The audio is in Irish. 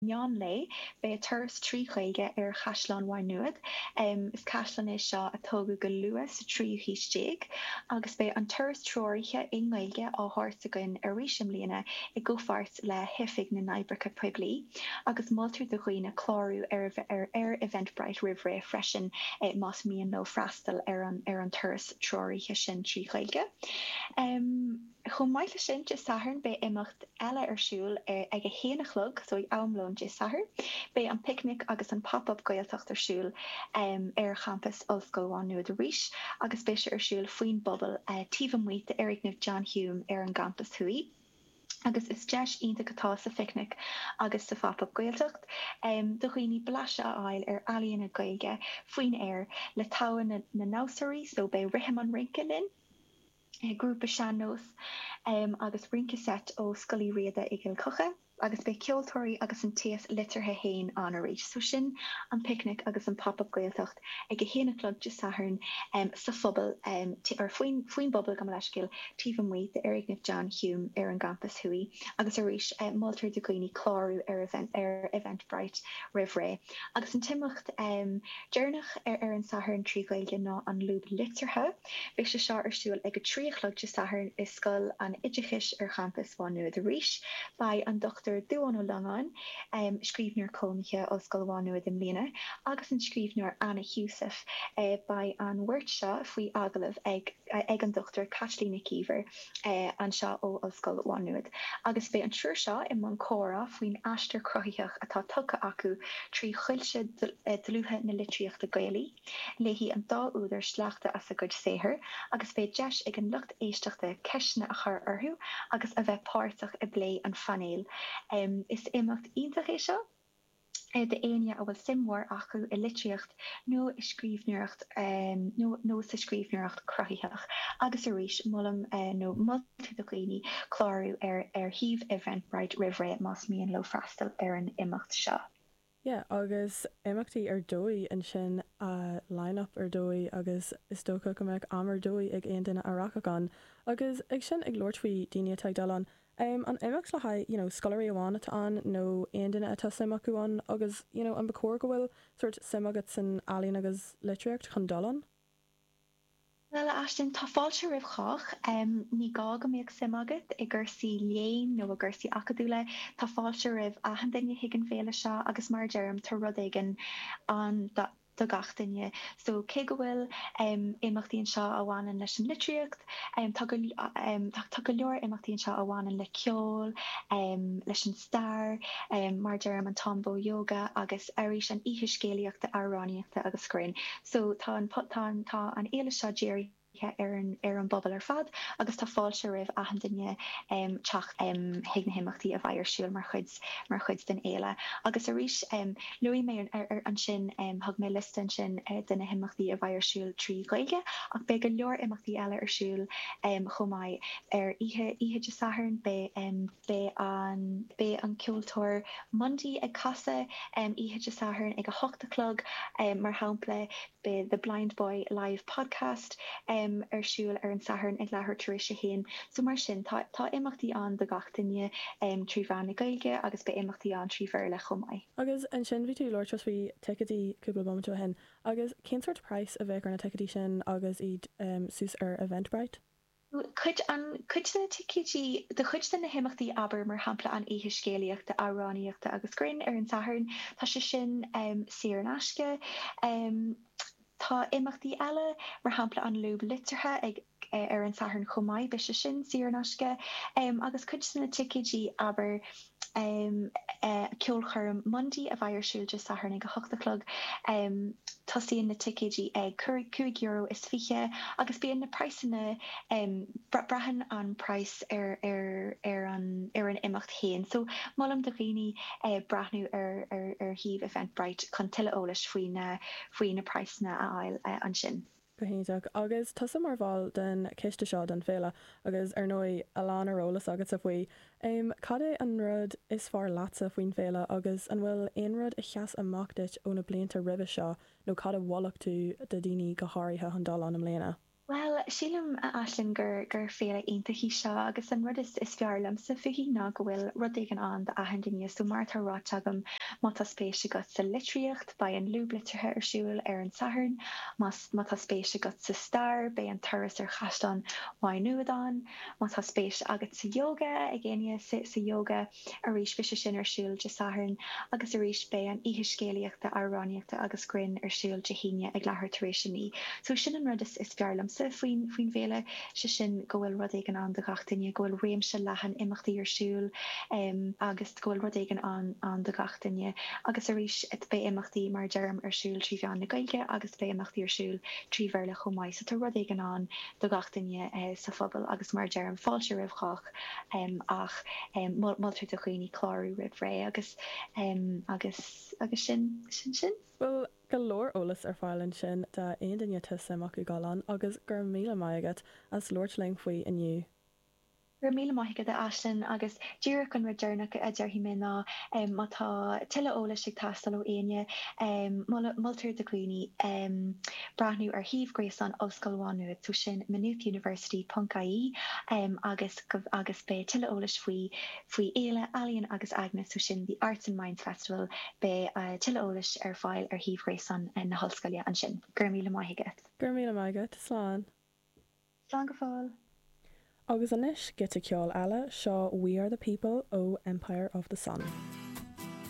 meán lae, beidh turas trí Ghaeilge ar Chaisleán Mhaigh Nuad. Is caisleán é seo a tógadh go luath sa tríú haois déag agus beidh an turas treoraithe i nGaeilge á thabhairt againn arís i mbliana i gcomhpháirt le hOifig na nOibreacha Poiblí agus moltar do dhaoine clárú ar Eventbrite roimh ré freisin más mian leo freastal ar an turas treoraithe sin trí Ghaeilge. Chomh maith leis sin, Dé Sathairn beidh imeacht eile ar siúl ag a haon a chlog, so ag am lóin Dé Sathairn, beidh an Picnic agus an Pop Up Gaeltacht ar siúl ar champas Ollscoil Mhá Nuad arís agus beidh sé ar siúl faoin bpuball taobh amuigh d'fhoirgneamh John Hume ar an gcampas thuaidh agus is deis iontach atá sa Phicnic agus sa Phop Up Gaeltacht do dhaoine blaiseadh a fháil ar ealaíona Gaeilge faoin aer le togha na ndamhsóirí, so beidh rithim an rince linn. grúpa sean-nós agus rince seit ó Scoil Uí Riada i gCill Choca agus beidh ceoltóirí agus an t-aos liteartha fhéin ann arís. So sin An Picnic agus an Pop Up Gaeltacht ag a haon a chlog Dé Sathairn sa phuball, or faoin bpuball, gabh mo leithscéal, taobh amuigh d'fhoirgneamh John Hume ar an gCampas Thuaidh agus arís moltar do dhaoine clárú ar Eventbrite roimh ré. Agus an t-imeacht deireanach ar ar an Satharn trí Ghaeilge ná An Lúb Liteartha, Beidh sé seo ar siúl ag a trí a chlog Dé Sathairn i Scoil an Oideachais ar Champas Mhá Nuad arís. Beidh an Dr. Dubhán Ó Longáin, scríbhneoir cónaithe Ollscoil Mhá Nuad i mbliana, agus an scríbhneoir Anna Heussaff, beidh an bheirt seo faoi agallamh ag ag an Dr. Caitlín Nic Íomhair anseo ó Ollscoil Mhá Nuad, agus beidh an triúr seo i mbun comhrá faoin aistear cruthaitheach atá tugtha acu trí choillte dlútha na litríochta Gaelaí. Léifidh an dá údar sleachta as a gcuid saothair agus beidh deis ag an lucht éisteachta ceisteanna a chur orthu agus a bheith páirteach i bplé an phainéil. Is imeacht iontach é seo d'éinne a bhfuil suim mhór acu i litríocht nó i scríbhneoireacht nó sa scríbhneoireacht chruthaitheach agus arís molaim nó moltar do dhaoine clárú ar shuíomh Eventbrite roimh ré más mian leo freastal ar an imeacht seo. Yeah, agus imeachtaí ar dóigh ansin, line up ar dóigh agus is dócha go mbeadh am ar dóigh ag aon duine a rachadh ann agus ag sin ag labhairt faoi daoine atá ag dul ann, em an imeacht le haghaidh you know scoláirí amháin atá ann nó aon duine atá suim acu ann agus you know an ba chóir go bhfuil sórt suim agat san ealaín agus litríocht chun dul ann? Bhuel, a Aisling, tá fáilte roimh chách. Ní gá go mbeadh suim agat i gcúrsaí léinn nó i gcúrsaí acadúla, tá fáilte roimh achan duine chuig an fhéile seo agus mar a deirim, tá rud éigin ann do gach duine. So, cé go bhfuil imeachtaí anseo a bhaineann leis an litríocht, tá go leor imeachtaí anseo a bhaineann le ceol, leis an stair, mar a deirim, an Táin Bó Ióga agus arís an oíche scéalaíochta, amhránaíochta agus grinn. So tá an, tá an, tá an fhéile seo dírithe ar an, ar an bpobal ar fad agus tá fáilte roimh achan duine teacht chuig na himeachtaí a bheidh ar siúl mar chuid, mar chuid den fhéile. Agus arís, luaigh mé ansin, thug mé liosta ansin de na himeachtaí a bheidh ar siúl trí Ghaeilge ach beidh go leor imeachtaí eile ar siúl chomh maith. Ar oíche, oíche Dé Sathairn beidh. Beidh an Beidh an ceoltóir Mundy ag casadh oíche Dé Sathairn ag a hocht a chlog. Mar shampla, beidh The Blindboy Live Podcast ar siúl ar an Satharn ag leathuair tar éis a haon. So mar sin, tá tá imeachtaí ann do gach duine trí mheán na Gaeilge agus beidh imeachtaí ann trí Bhéarla chomh maith. Agus ansin bhí tú ag labhairt faoi ticeadaí cúpla bomaite ó shin. Agus cén sórt praghas a bheadh ar na ticeadaí sin agus iad suas ar Eventbrite? cuid, an, cuid de na ticéidí do chuid de na himeachtaí, abair, mar shampla, an oíche scéalaíochta, amhránaíochta agus grinn ar an Satharn, tá sé sin saor in aisce. Tá imeachtaí eile, mar shampla an Lúb Liteartha ag, ar an Satharn chomh maith, beidh sé sin saor in aisce. Agus cuid de na ticéidí, abair. Ceolchoirm Mundy a bheidh ar siúl Dé Sathairn ag a hocht a chlog. Tosaíonn na ticéidí ag cúig euro is fiche agus bíonn na praghsanna, braitheann an praghas ar an imeacht féin so molaim do dhaoine breathnú ar shuíomh Eventbrite chun tuilleadh eolais faoi na praghsanna a fháil ansin. Go hiontach. Agus tusa mar bhall den choiste seo don Féile, agus ar ndóigh a lán ar eolas agatsa faoi, em, cad é an rud is fearr leatsa faoin Féile agus an bhfuil aon rud a sheas amach duit ó na blianta roimhe seo nó cad a mholfadh tú do dhaoine go háirithe chun dul ann i mbliana? Bhuel, sílim, a Aisling, gur, gur Féile iontach í seo agus an rud is, is fearr liomsa fúithi ná go bhfuil rud éigin ann d'achan duine, so mar atá ráite agam, má tá spéis agat sa litríocht, Beidh an Lúb Liteartha ar siúl ar an Satharn. Más má tá spéis agat sa stair, beidh an turas ar Chaisleán Mhaigh Nuad ann. Má tá spéis agat sa yoga, ag éinne sa yoga arís, beidh sé sin ar siúl Dé Sathairn. Agus arís, beidh an oíche scéalaíochta, amhránaíochta agus grinn ar siúl Dé hAoine ag leathuair tar éis a naoi. So sin an rud is fearr liomsa faoin faoin bhféile, sé sin go bhfuil rud éigin ann do gach duine, go bhfuil réimse leathan imeachtaí ar siúl agus. go bhfuil rud éigin ann ann do gach duine agus arís beidh imeachtaí mar a deirim ar siúl trí mheán na Gaeilge agus beidh imeachtaí ar siúl trí Bhéarla chomh maith so tá rud éigin ann do gach duine sa phobal agus mar a deirim fáilte roimh chách ach moltar do dhaoine clárú roimh ré agus agus agus sin sin sin. Bhfuil go leor eolas ar fáil ansin do aon duine atá suim acu dul ann agus go raibh míle maith agat as labhairt linn faoi inniu. Go raibh míle maith agat, a Aisling, agus díreach an rud deireanach a déarfaidh mé ná má tá tuilleadh eolais ag teastáil ó éinne, moltar do dhaoine breathnú ar shuíomh gréasáin Ollscoil Mhá Nuad, so sin maynoothuniversity ponc IE agus beidh tuilleadh eolais faoi faoi Fhéile Ealaíon agus Aigne, so sin The Arts and Minds Festival, beidh tuilleadh eolais ar fáil ar shuíomh ghréasáin na hollscoile ansin. Go raibh míle maith agat. Go raibh míle maith agat. Slán. Slán go fóill. Agus anois, giota ceoil eile, seo We Are The People ó Empire Of The Sun.